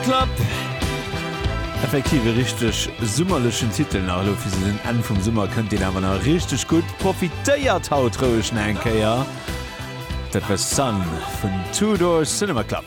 Klapp! Effektiv e richteg summerlechen Titel nach elo fir sou den Enn vum Summer kënnt deen awer nach richteg gutt. Profitéiert haut roueg nach eng Kéier! Dat war Sun vun Two Door Cinema Club.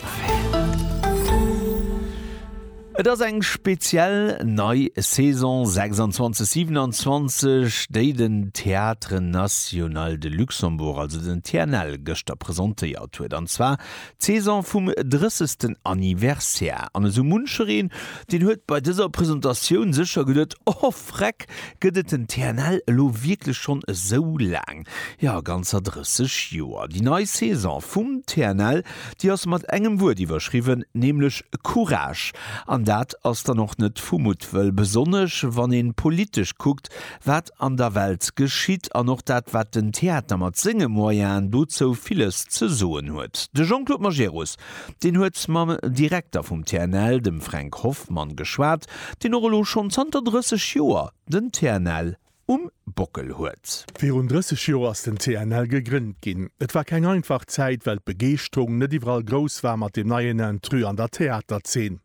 Et ass eng speziell nei Saison 26, 27, déi den Théâtre National de Luxembourg, also den TNL, gëschter presentéiert huet. An zwar D'Saison vum 30. Anniversaire, an esou munchereen, deen huet bei dëser Presentatioun sécher geduet, Oh Vreck, gëtt et den TNL elo wierklech schonn esou laang? Jo, ganzer 30 Joer! Déi nei Saison vum TNL, déi ass mat engem Wuert iwwerschriwwen, nämlech Courage. An dat ass dann och net vu Muttwëll, besonnesch wann ee politesch kuckt, wat an der Welt geschitt an och dat, wat den Theater mat senge Moyenen dozou villes ze soen huet. De Jean-Claude Majerus, deen huet mam Direkter vum TNL, dem Fränk Hoffmann, geschwat, deen och elo schonn zanter 30 Joer den TNL um Bockel huet. Virun 30 Joer ass den TNL gegrënnt ginn. Et war keng einfach Zäit, well d'Begeeschterung net iwwerall grouss war mat deem neien Intrus an der Theaterzeen.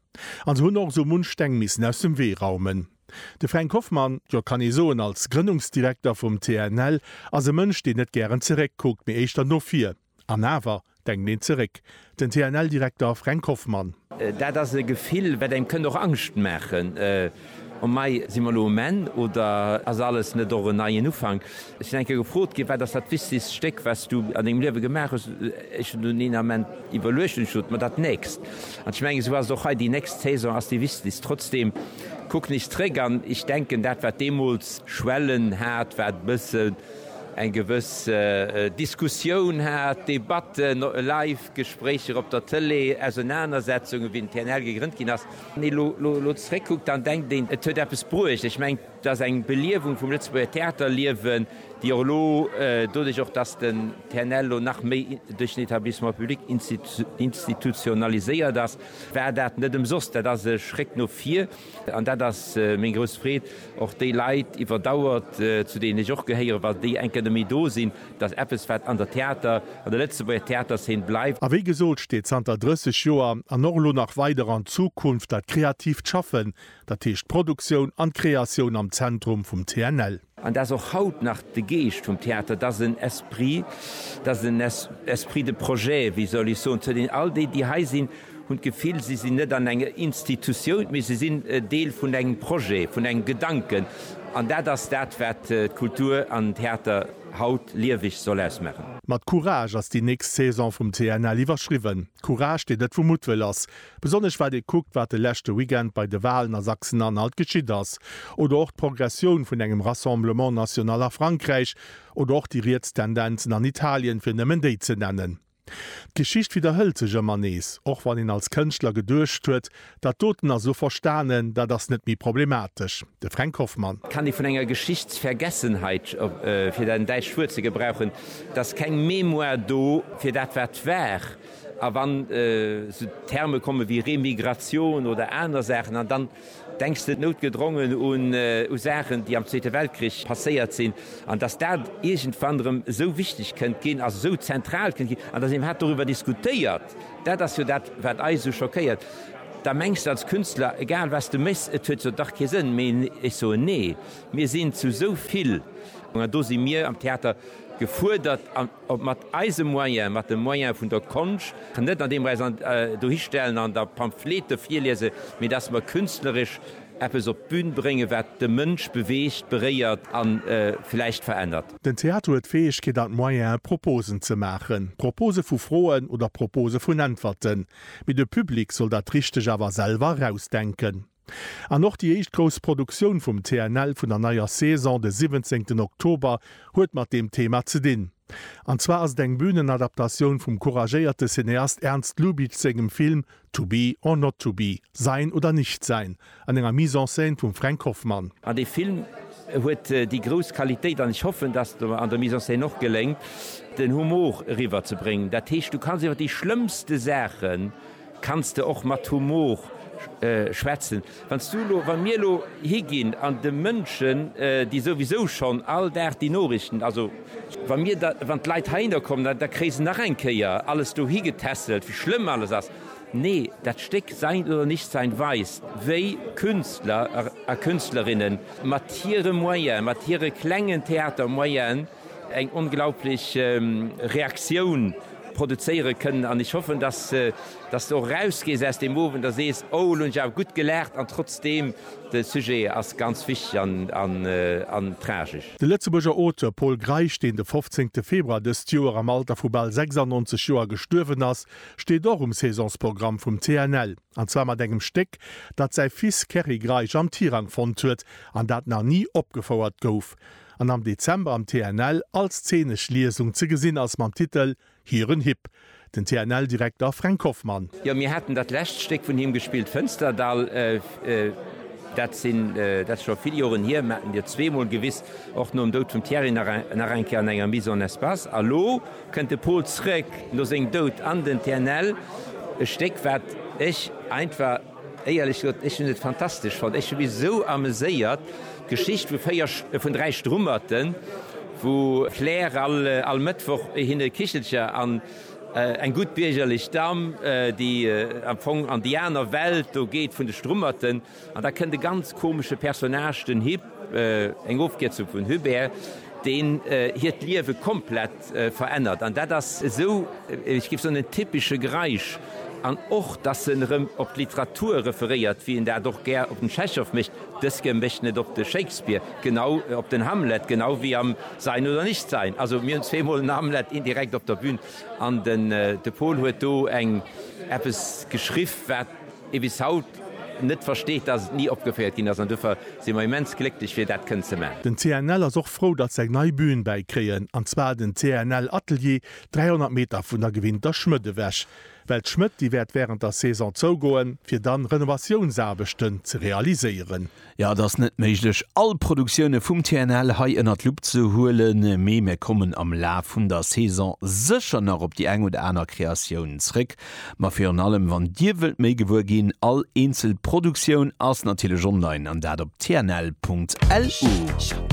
An se hunn och esou munch Steng missen aus dem Wee raumen. De Fränk Hoffmann, jo kann ee soen als Grënnungsdirekter vum TNL, ass e Mënsch deen net gären zeréck kuckt, mee éischter no vir. An awer denkt een zeréck. Den TNL-Direkter Fränk Hoffmann. Dat ass e Gefill wat engem kënnt och Angscht maachen, oh mei, si mer elo um Enn oder ass alles net och en neien Ufank? Ech sinn eng Kéier gefrot ginn, wat ass dat wichtegst Stéck wat s du an dengem Liewe gemaach hues? Ech hunn dunn een Ament iwwerluecht an ech sot, ma dat nächst. An ech mengen esou ass et och hei, déi nächst Saison ass déi wichtegst. Trotzdeem. Kuck nees zréck an ech denken dat wat deemools Schwellen hat, wat e bëssen eng gewëss Diskussioun hat, Debatten, live Gespréicher op der Tëlee, Ausenanersetzungen wéi den TNL gegrënnt ginn ass. Wann ee lo zréck kuckt, dann denkt een et huet eppes bruecht. Ech mengen et ass eng Beliewung vum Lëtzebuerger Theaterliewen, déi och elo doduerch och datt den TNL elo nach méi duerch den Etablissement public institutionaliséiert ass, War dat net ëmsoss. Dat ass e Schréck no vir. An dat ass meng grouss Freed, och déi Leit iwwer Dauer, zu deenen ech och gehéieren, wa déi eng Kéier net méi do sinn, dass eppes, wat an der Theater, an der Lëtzebuerger Theaterszen bleift. A wéi gesot, steet zanter 30 Joer an och elo nach weider an Zukunft dat kreatiivt Schaffen, dat heescht d'Produktioun an d'Kreatioun am Zentrum vum TNL. An dat ass och haut nach de Geescht vum Theater, dat ass en Esprit, dat ass en Esprit de projet, wéi soll ech soen, zu deenen all déi, déi hei sinn, hunn d'Gefill, si sinn net an enger Institutioun, mee si sinn Deel vun engem Projet, vun engem Gedanken. An dat ass dat, wat d'Kultur an den Theater haut lieweg soll ausmaachen. Mat Courage ass déi nächst Saison vum TNL iwwerschriwwen. Courage, deen net vu Muttwëll ass. Besonnesch wat ee kuckt, wat de leschte Weekend bei de Walen a Sachsen-Anhalt geschitt ass, oder och d'Progressioun vun engem Rassemblement national a Frankräich, oder och déi riets Tendenzen an Italien, fir nëmmen déi ze nennen. D'Geschicht widderhëlt sech ëmmer nees, och wann een als Kënschtler geduecht huet, dat doten ass elo verstanen, dat ass net méi problematesch. De Fränk Hoffmann. Kann déi vun enger Geschichtsvergessenheit, fir dat däitscht Wuert ze gebrauchen, et ass keng Mémoire do fir dat wat war. A wann esou Terme komme wéi Remigratioun oder aner Saachen an dann denks de noutgedrongen u Saachen, déi am Zweete Weltkrich passéiert sinn an datt dat iergendwann erëm esou wichteg kënnt ginn, also esou zentral kënnt ginn an datt een iwwerhaapt doriwwer diskutéiert. Dat ass jo dat, wat eis esou schockéiert. Da mengs de als Künstler, egal wat s de méchs, et huet jo dach kee Sënn méi. Ech soen, Nee, mir sinn zu esou vill, an do si mir am Theater gefuerdert. Ob mat eise Moyen, mat de Moyen vun der Konscht, net an deem mer äis dohi stellen an da Pamphlete virliese, mee datt mer künstleresch eppes op d'Bün bréngen, wat de Mënsch beweegt, beréiert a vläicht verännert. Den Theater huet d'Fäegkeet an d'Moyene Proposen ze maachen, Propose vu Froen oder Propose vun Äntwerten, mee de Public soll dat Richteg awer selwer erausdenken. An och déi éischt grouss Produktioun vum TNL vun der neier Saison, de siwwenzéngten Oktober, huet mat deem Thema ze dinn. An zwar ass et eng Bühnenadaptatioun vum couragéierte Cineast Ernst Lubitsch sengem Film To be or not to be, Sein oder nicht sein, an enger Mise en scène vum Fränk Hoffmann. An dee Film huet déi grouss Qualitéit, an ech hoffen, dass et mer an der Mise en scène och geléngt, den Humor eriwwer ze bréngen. Dat heescht, du kanns iwwer déi schlëmmste Saachen Kanns de och mat Humor schwätzen? Wann s du elo, wann mir elo higinn an de Mënschen, déi souwisou schonn all Dag déi Norichten, also wa mir da, wann d'Leit heihinner kommen, da, da kréie se nach eng Kéier alles dohi getässelt, wéi schlëmm alles ass. Nee, dat Stéck Sein oder Nichtsein weist, wéi Künstler a Künstlerinnen mat hire Moyen, mat hire klengen Theatermoyen, eng onglaublich Reaktioun produzéiere kënnen an ech hoffen, dass s de och erausgees aus deem Owend a sees, oh, elo hunn ech awer gutt gelaacht an trotzdeem, de Sujet ass ganz wichteg an tragesch. De Lëtzebuerger Auteur Pol Greisch, deen de 15 Februar dëst Joer am Alter vu bal 96 Joer gestuerwen ass, steet och um Saisonsprogramm vum TNL, an zwar mat engem Stéck, dat säi Fils Kerry Greisch am Tirang fonnt huet an dat nach ni opgefouert gouf. an am Dezember am TNL als zeenesch Liesung ze gesinn ass mam Titel Hiren Hipp, den TNL-Direkter Fränk Hoffmann. Jo, mir haten dat lescht Stéck vun him gespillt, Fënsterdall. Dat sinn, dat ass scho vill Joren hier, mir haten dir zweemol gewis, och nom Doud vum Thierry nach eng, nach eng Kéier an enger Mise en espace. A lo kënnt de Pol zrëck no sengem Doud an den TNL, e Stéck, wat ech einfach. Éierlech gesot, ech hunn et fantastesch fonnt. Ech hu mech esou ameséiert. D'Geschicht vu véier, vun dräi Strummerten, wou d'Claire all, all Mëttwoch hinne e Kichelcher an eng gutt biergerlech Damm, déi am Fong an déi aner Welt do geet vun de Strummerten. An da kënnt e ganz komesche Personnage, den Hip, Eng Ofkierzung vun Hubert, deen hiert Liewe komplett verännert. An dat ass esou, ech géif soen, en typesche Greisch. An och, datt en erëm op d'Literatur referéiert, wéi en dat och gär op den Tschechow mécht, dëske mécht en et op de Shakespeare, genau op den Hamlet, genau wéi am Sein oder nicht sein. Also mir hunn zweemol en Hamlet indirekt op der Bühn. An de Paul huet do eng eppes geschriff, wat. ee bis haut net versteet, dass et ni opgeféiert ginn ass an dofir si mer immens glécklech fir dat kënnen ze maachen. Den CNL ass och frou, datt se eng nei Bühn bäikréien, an zwar den CNL Atelier, 300 Meter vun der gewinnter Schmëtt ewech. Well d'Schmëtt, déi wäert wärend der Saison zougoen, fir dann Renovatiounsaarbechten ze realiséieren. Jo, et ass net méiglech, all Produktioune vum TNL hei ënner d'Lupp ze huelen, mee mir kommen am Laf vun der Saison sécher nach op déi eng oder aner Kreatioun zréck. Ma virun allem, wann Dir wëllt méi gewuer ginn, all eenzel Produktioun ass natierlech online, an dat op tnl.lu.